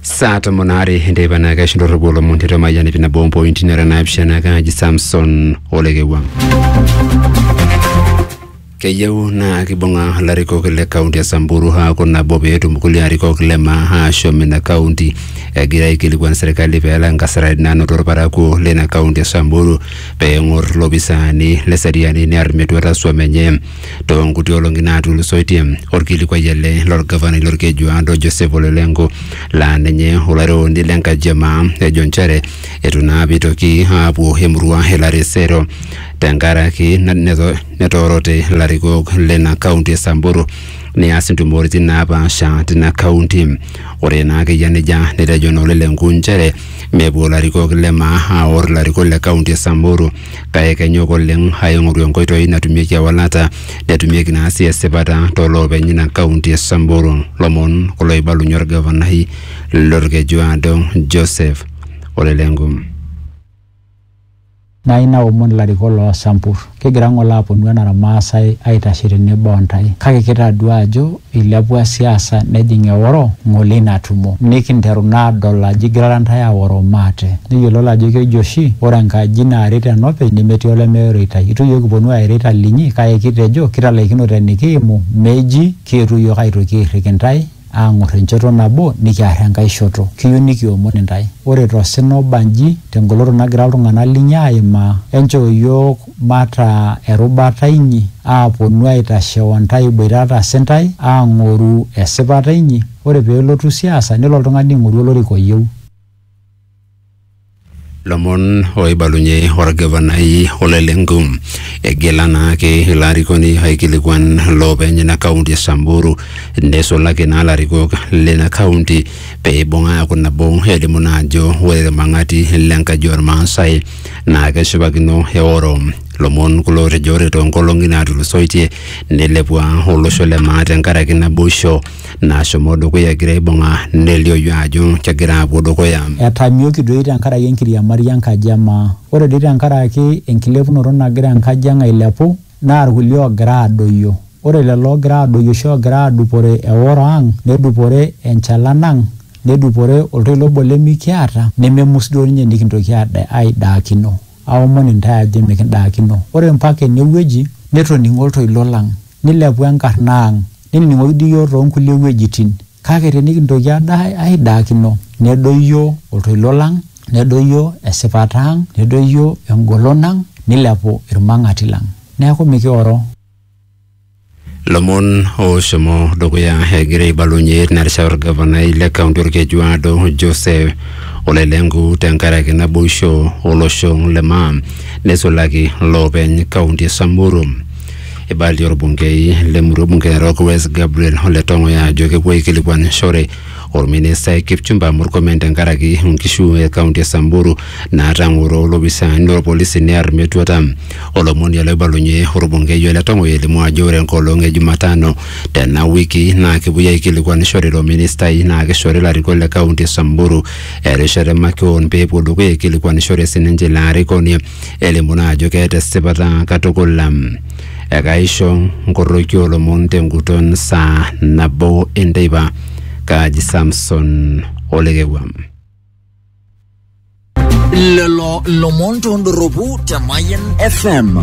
saa tomon aare enteipa naa keisho ndorropu olomon tiatua mayian ipi nabo ompointi nara naapishana kaaji samson olekewang keyieu naa kibung'a ilarikok le kaunti e samburu aaku nabo peetum kulie arikok le maa aashom ina kaunti egira aikilikuan serkali peelak inkasarani naanoto irparakuo leina kaunti e samburu peeng'or ilopisaani le seriani near metuata swam enye too nkuti olong'i naatulusoitie. Olkilikuai ele lolgavanai lolkejuado Joseph Ole Lenku laa ninye olairoroni le nkaji e maa ejo nchere eitu naa apa eitoki aapuo emurua e Laresero tenkaraki neto- netoorote ilarikok leina kaunti e Samburu neas intumoritin naapaasha tina kaunti. Ore naa ake eyia nejia netejo naa Ole Lenku nchere mepuo ilarikok le maa aor ilarikok le kaunti e Samburu kake kenyok oleng aing'oru enkoitoi natumieki ewalata netumieki naa sii esipata tooloopeny ina kaunti e Samburu. Lomon kulo oibalunye olgavanai lolkejuaado Joseph Ole Lenku. Nai naomon ilarikok loo Sambur, kigira ng'ole aaponu enara Maasai aitashe tenebo o ntae, kake kitaduaa ajo Eilepua siasa nejing eoro ngole ina tumo. Nikinteru naa adol ajo igirara ntae aoro maate. Nikiyiololo ajo keji oshi ore enkaji naaret enopeny nemetii olemeoreitai. Eitu iyiook kiponu aaireita linyi kake kitejo kitalaikino tenikiimu meji kietuo iyiook aitoki airrik intae aang'or enchoto nabo nikiar enkae shoto. Kiyieu nikiomon intae. Ore to sina oba nji, te ngoloto nagira iltung'ana linyi aaimaa, enchoo iyiook mataa erubata inyi, aaponu aitashe o ntae iboitata si ntae, aang'oru esipata inyi, ore pee elotu siasa, nelo oltung'ani aing'oru olorika oyieu. Lomon oibalunye olgavanai Ole Lenku. Egil anaake ilo arikoni aikilikuan loopeny ina kaunti e Samburu neisulaki naa larikok leina kaunti pee eibung aaku nabo elimu naa ajo ore ilmang'ati le nkaji olmaasai naa keshipakino eoro lomon kulo otejo ore toonkolong'i naatulusoitie neilepua olosho le maa tenkaraki naboisho nashomo dukuya egira aibung'a nelioyu ajo kegira apuo dukuya. Etamioki doi tenkaraki enkiriamari enkaji e maa. Ore doi tenkaraki enkilepunoto nagira enkaji ang ailepu naa ilkulie oogira aadoyio. Ore lelo oogira aadoyio oshi oogira aadupore eoro ang nedupore enchalan ang nedupore oltoilo obo limikiata nememus duo ninye nikintoki aaidaakino. Aomon intae ajo emikindaakino. Ore mpaka enewueji netoning'o oltoilo lang nilepu enkarna ang. Nenining'oki dii iyiook too nkulie wuejitin kake tenikintoki aaidaakino nedoyio oltoilo lang, nedoyio esipata ang, nedoyio engolon ang neilepu ilmang'ati lang. Neaku mikioro. Lomon ooshomo dukuya egira aibalunye narishata olgavanai le kaunti Olkejuado Joseph Ole Lenku tenkaraki naboisho olosho le maa neisulaki loopeny kaunti e Samburu. Eibalie orbungei le murua bunge Narok West Gabriel Ole Tong'oya ajo kepuo aikilikuanishore orministai Kipchumba Murkomen tenkaraki nkishu e kaunti e Samburu naatang'oro olopisaani lorpolisi near metuata. Olomoni ele oibalunye orbungei Ole Tong'oya elimu ajo ore enkolong e Jumatano tena wiki naa kepuoi aikilikuanishore ilo ministai naa kishori ilarikok le kaunti e Samburu erishata e makeon pee epuo dukuya aikilikuanishore sininche ilo arikoni. elimu naa ajo keeta esipata katukul. Ekaisho nkoroki oolomon tenguton saa nabo enteipa. Kaaji Samson Olekewua. Lelo lomon tondoropu te Mayan FM.